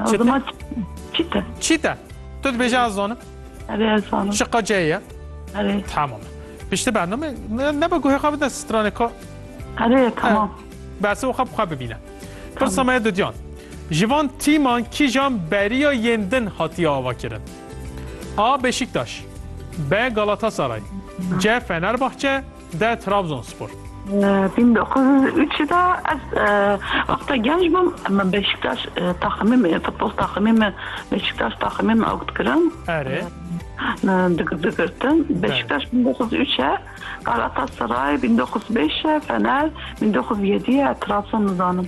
O zaman çite. Çite. Tu dibêje ez zanim. Erê ez zanim. Şiqa ceyê ye. Erê. Tamam. Pişti bername nebe guhê xwe bide stranê ka. Erê tamam. Berse û xwe bi xwe bibîne. Pirsa me didiyan. Ji van tîman kîjan beriya yên din hatiye avakirin? A. Beşiktaş B. Galatasaray C. Fenerbahçe De Trabzonspor. Bin dokuz yüz û üç de ez wexta genç bûm me Beşiktaş taximê me futbol taximê me Beşiktaş taximê me ewt kirin. Erê. Digirtin Beşiktaş bin dokuz yüz üç e Galatasaray bin dokuz yüz beş e Fener bin dokuz yüz yedî e Trabzon nizanim.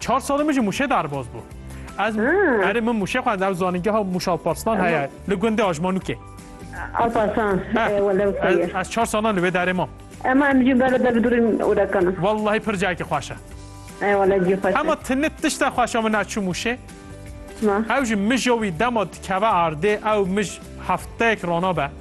Çar salê min jî Mûşê derbas bû. Ez erê min Mûşê xwend ew zanîngeha Mûş Alparslan heye li gundê Ajmanûkê. Alparslan welewteye. Ez çar salan li wê derê mam. Ema em jî bela der bidurîn û dekana. Wellahî pir cayekî xweş e. E wele cî xweş e. Hema tinê tişta xweş e min ez çûm Mûşê. Çima? Ew ji mija wî dema dikeve erdê ew mij hefteyek rana be.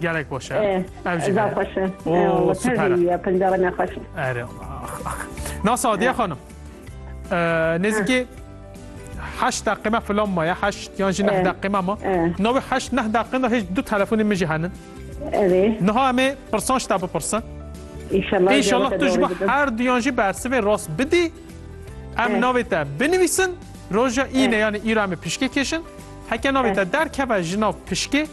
Gelek baş e. Ev jî Zaf xweş e. Oo, süper e. Penca ne xweş. Ere. Nas Adiye xanım. Nêzikî heşt deqîme filan ma ya heşt yan jî neh deqîme ma. Navê heşt neh deqîme hêj du telefonê min jî henin. Erê. Niha em ê pirsan ji te bipirsin. İnşallah. İnşallah tu ji her duyan jî bersivê rast bidî. Em navê te binivîsin. Roja îne yani îra em ê pişkê kêşin. Heke navê te derkeve ji nav pişkê.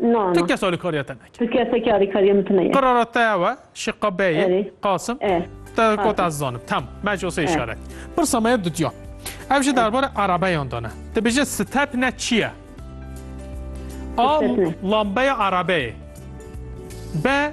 Na, na. Tu kes alîkariya te neke. Tu kesekî alîkariya min tu neye. Qirara te ew e, şî qa beyê, Erê. Qasim, E. te got Qasim. ez zanim. Tamam, me ji osê îşaret. Pirsa me ye dudya. Ev jî derbara erebeyan de ne. Dibêje step ne çi ye? A. Step ne. Lambeya erebeyê. B.